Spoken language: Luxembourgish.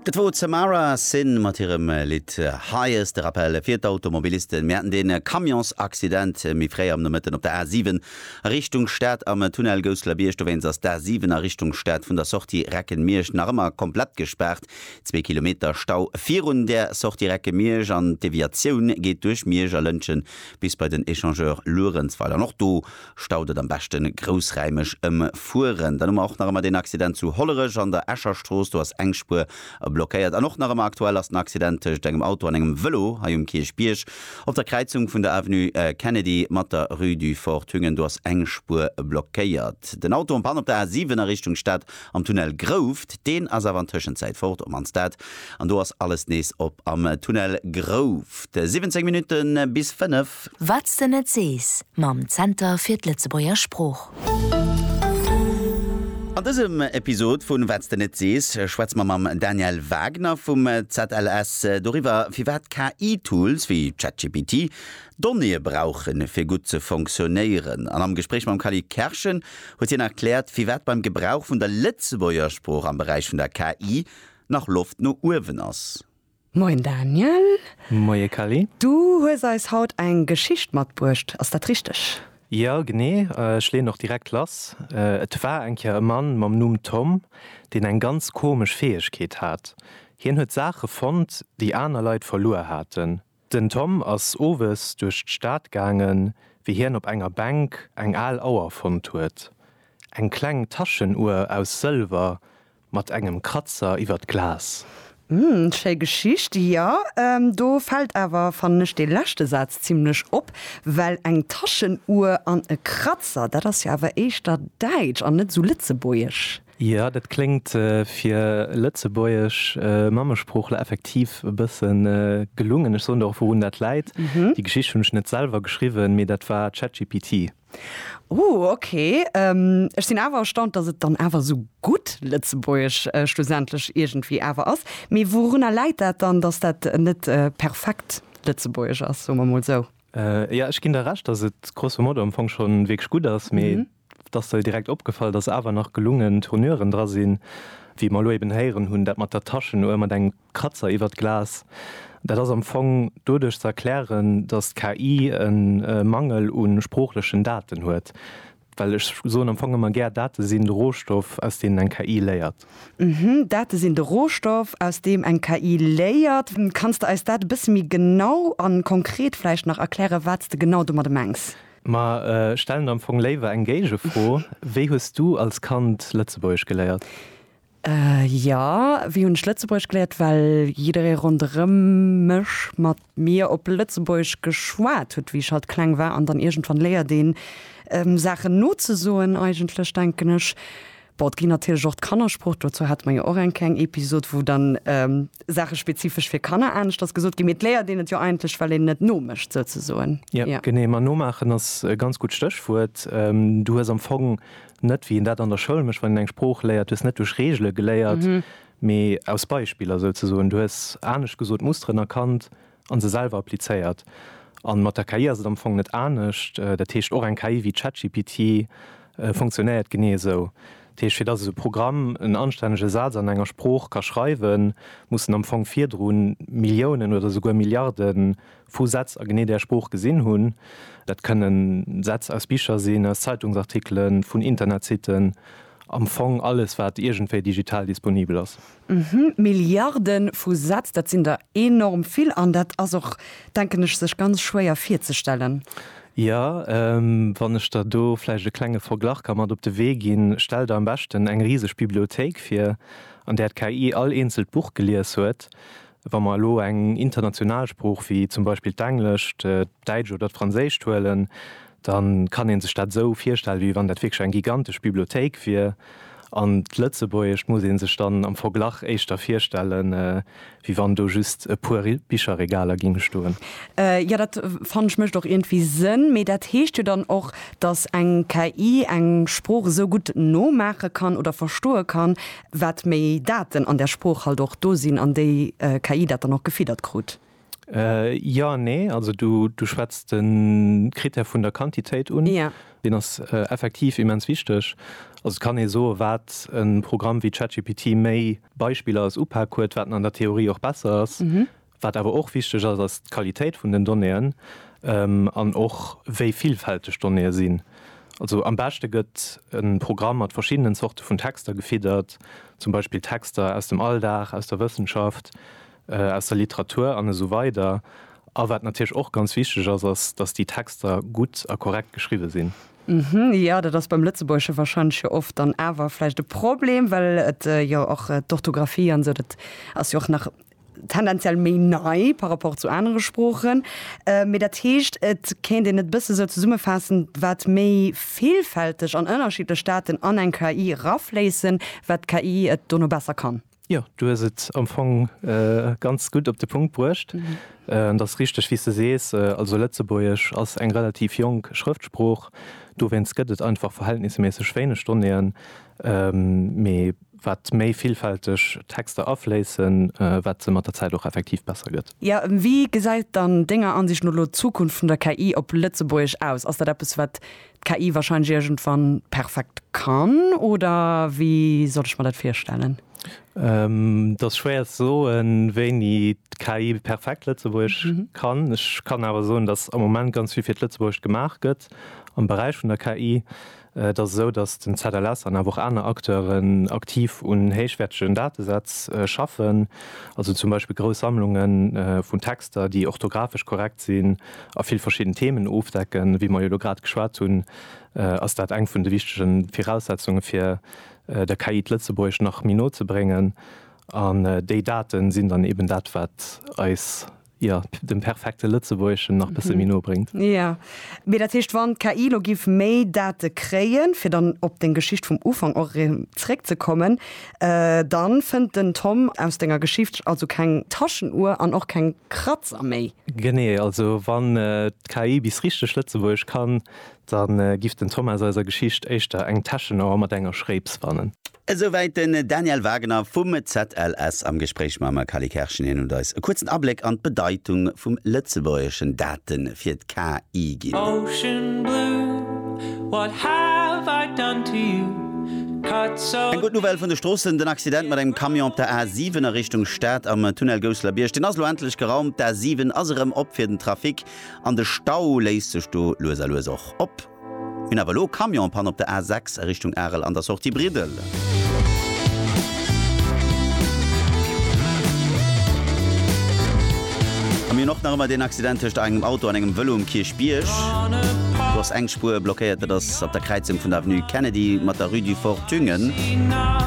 Dat wor d'Samara Sin mat hirem Lidd Highest. De Rappel fir d'Automobilisten, Mir haten dee Camionsaccident méi fréi am Nomëtten op der A7 a Richtung Stad am Tunnel Gousselerbierg. Dowéinst ass d'A7 a Richtung Stad vun der Sortie Reckenmiersch nach ëmmer komplett gespaart. Zwee Kilometer Stau virun der Sortie Reckenmiersch an d'Deviatioun geet duerch Miersch a Lëntgen bis bei den Echangeur Luerenzweiler. An och do Staut et am beschten groussräimeg em fueren. Dann hu mer och nach emmer deen Accident zu Hollerech an der Escher Strooss. Do ass eng Spuer blockéiert. An och nach emmer aktuell ass den Accident tëscht engem Auto an engem Vëlo hei um Kierchbierg op der Kräizung vun der Avenue Kennedy mat der Rue du Fort Thüngen. Do ass eng Spuer blockéiert. Den Auto en panne op der A7 a Richtung Stad am Tunnel Grouft. Deen ass awer an Tëschenzäit fort op an Stad an do ass alles nees op am Tunnel Grouft. 17 Minutten bis 5. Wat s de net sees mam Zenter fir d'Lëtzebuerger Sprooch. An dësem Episod vun Wat s de net sees schwätze mer mam Daniel Wagner vum ZLS doriwwer, firwat KI-Tools wéi ChatGPT Donnéeë brauchen, fir gutt ze fonctionnéieren. An am Gespréich mam Khalid Kerschen huet hien erkläert, firwat beim Gebrauch vun der Lëtzebuerger Sprooch am Beräich vun der KI nach Loft no uewen ass. Moien Daniel. Moie Kelly. Du hues eis haut eng Geschicht matbruecht, ass dat richteg? Jo, genee. Ech leeën och direkt lass. Et war eng Kéier e Mann mam Numm Tom, deen eng ganz komesch Fäegkeet hat. Hien huet Saache fonnt, déi aner Leit verluer haten. Den Tom ass owes duerch d'Stad gaangen, wéi hien op enger Bänk eng al Auer fonnt huet. Eng kleng Taschenuer aus Sëlwer Mat engem Kratzer iwwer d'Glas. Hm, schéi Geschicht. Jo, do fällt awer, fannen ech, dee leschte Saz zimlech op, well eng Taschenuhr an e Kratzer, dat ass jo awer éischter däitsch an net esou lëtzebuergesch. Jo, dat kléngt fir lëtzebuergesch Mammesproochler effektiv e bësse gelungen. Ech soen der och, wourun dat läit. Déi Geschicht hunn ech net selwer geschriwwen, mee dat war ChatGPT. Ooh ok, ech sinn awer erstaunt dass et dann awer esou gutt Lëtzebuergesch schlussendlech iergendwéi awer ass. Mee wourunner läit dat dann dass dat net perfekt Lëtzebuergesch ass, soe mer mol esou? Jo ech ginn der Recht dass et grosso modo am Fong schonn wierklech gutt ass, mee et ass der direkt opgefall dass awer nach gelungen Tonuren dra sinn wéi mer elo eben héieren hunn, dat mat der Taschenuer mat engem Kratzer iwwert Glas, dat ass am Fong doduerch ze erklären, datt d'KI e Mangel u sproochlechen Daten huet, well ech soen am Fong ëmmer gär, Date sinn de Rohstoff, aus deenen eng KI léiert. Uhmm, Date sinn de Rohstoff, aus deem eng KI léiert. Kanns de eis dat e bësse méi genau a konkret vläicht nach erklären, wat s de genau domadde mengs? Ma stellen der am Fong léiwer eng Géigefro, Wéi hues du als Kand Lëtzebuergesch geléiert? Jo, wéi hunn ech Lëtzebuergesch geléiert? Well jidderee ronderëm mech mat mir op Lëtzebuergesch geschwat huet, wéi ech halt kleng war. An dann iergendwann léiert een Saachen nozesoen eigentlech, denken ech. Bon, et ginn natierlech och d'Kannersprooch, dozou hate mer jo och eng kleng Episod, wou dann Saache spezifesch fir Kanner aneschters gesot ginn. Mee et léiert een et jo eigentlech, well een et nomécht souzesoen. Jo, genee. Ma nomaachen ass e ganz gutt Stéchwuert. Du hues am Fong Net wéi een dat an der Schoul mécht, wann een eng Sprooch léiert, du hues net duerch Reegele geléiert, mee aus Beispiller souzesoen. Du hues, anescht gesot, Musteren erkannt a se selwer applizéiert. A mat der KI ass et am Fong net anescht. Dat heescht, och eng KI wéi ChatGPT funktionéiert genee esou. Dat heescht, fir datt esou e Programm en anstännege Saz an enger Sprooch ka schreiwen, mussen am Fong virdrun Milliounen oder esouguer Milliarde vu Sätz a genee där Sprooch gesinn hunn. Dat kënnen Sätz aus Bicher sinn, aus Zeitungsartikelen, vun Internetsitten, am Fong alles, wat iergendwéi digital disponibel ass. Uhmm, Milliarde vu Sätz, dat sinn der enorm vill an dat ass och, denken ech, sech ganz schwéier virzestellen. Jo, wann ech der do vläicht e klenge Verglach ka mat op de Wee ginn, Stell der am beschten eng riseg Bibliothéik vir, an där d'KI all eenzelt Buch gelies huet. Wa mer elo eng international Sprooch wéi zum Beispill d'Englescht, d'Däitsch oder d'Franséischt huelen, da kann ee sech dat esou virstellen, wéi wann dat wierklech eng gigantesch Bibliothéik wier. An d'Lëtzebuergescht muss ee sech dann am Verglach éischter virstellen, wéi wann do just e puer Bicherregaler géinge stoen. Jo, dat fannen ech mécht och iergendwéi Sënn. Mee dat heescht jo dann och, datt eng KI eng Sprooch esou gutt nomaache kann oder verstoe kann, Wat méi Daten an der Sprooch halt och do sinn, an déi KI dat dann och gefiddert krut. Jo an nee. Also du schwätz de Critère vun der Quantitéit un. Deen ass effektiv immens wichteg. Also et kann ee soen, wat e Programm wéi ChatGPT méi Beispiller als Upak huet, wat en an der Theorie och besser ass. Wat awer och wichteg ass, ass d'Qualitéit vun den Donnéeën an och wéi villfälteg d'Donnéeë sinn. Also am beschte gëtt e Programm mat verschiddenen Zorte vun Texter gefiddert, zum Beispill Texter aus dem Alldag, aus der Wëssenschaft, aus der Literatur an esou weider A wat natierlech och ganz wichteg ass, ass, datt déi Texter gutt a korrekt geschriwwe sinn. Jo, dat ass beim Lëtzebuergesche warscheinlech jo oft dann awer vläicht e Problem, well et jo och d'Orthografie an esou, dat ass jo och nach tendenziell méi nei par rapport zu anere Sproochen. Mee dat heescht, et kéint een et e bësse sou zesummefaassen, wat méi villfälteg an ënnerschiddlech Daten an eng KI erafléissen, wat d'KI et dono besser kann. Jo, du hues et am Fong ganz gutt op de Punkt bruecht. Et ass richteg, wéi s de sees, also Lëtzebuergesch ass eng relativ jonk Schrëftsprooch, dowéinst gëtt et einfach verhältnisméisseg wéineg Donnéeën. Mee Wat méi villfälteg Texter afléissen, wat se mat der Zäit och effektiv besser gëtt. Jo, wéi gesäit dann Denger Ansicht no elo d'Zukunft vun der KI op Lëtzebuergesch aus? Ass dat eppes, wat d'KI warscheinlech iergendwann perfekt kann, oder wéi soll ech mer dat virstellen? Et ass schwéier ze soen, wéini d'KI perfekt Lëtzebuergesch kann. Ech kann awer soen, dass am Moment ganz vill fir d'Lëtzebuergescht gemaach gëtt am Beräich vun der KI. Et ass esou, datt den ZLS an awer och aner Acteuren aktiv un héichwäertegen Datesätz schaffen, also zum Beispill grouss Sammlunge vun Texter, déi orthografesch korrekt sinn a vill verschidden Themen ofdecken. Wéi mer jo elo grad geschwat hunn, ass dat eng vun de wichtege Viraussetzunge fir der KI d'Lëtzebuergesch nach méi no ze bréngen. An déi Date sinn dann eeben dat, wat eis. Jo, dem perfekte Lëtzebuergeschen nach bësse méi no bréngt. Jo, mee dat heescht, wann d'KI elo géif méi Date kréien, fir dann op deng Geschicht vum Ufank och erëm zréckzekommen, da fënnt den Tom aus denger Geschicht also keng Taschenuhr an och keng Kratzer méi. Genee, also wann d'KI bis richteg Lëtzebuergesch kann, da giff den Tom aus eiser Geschicht éischter eng Täschenauer mat enger Schréips fannen. Esouwäit den Daniel Wagener vum ZLS am Gespréich mam Kali Kerschen. Hien huet eis e kuerzen Abléck an d'Bedeitung vum Lëtzebuergeschen Date fir d'KI ginn. Eng gutt Nouvelle vun de Stroossen, Den Accident mat engem Camion op der A7 a Richtung Stad am Tunnel Gousselerbierg, deen ass elo endlech geraumt. D'A7 ass erëm op fir den Trafic an de Stau léisst sech do lues a lues och op. Mir hunn awer elo Camion-Panne op der A6 a Richtung Arel an der Sortie Briddel. A mir hunn och nach ëmmer deen Accident tëscht engem Auto an engem Vëlo um Kierchbierg. Do ass eng Spuer blockéiert. Dat ass op der Kräizung vun der Avenue Kennedy mat der Rue du Fort Thüngen.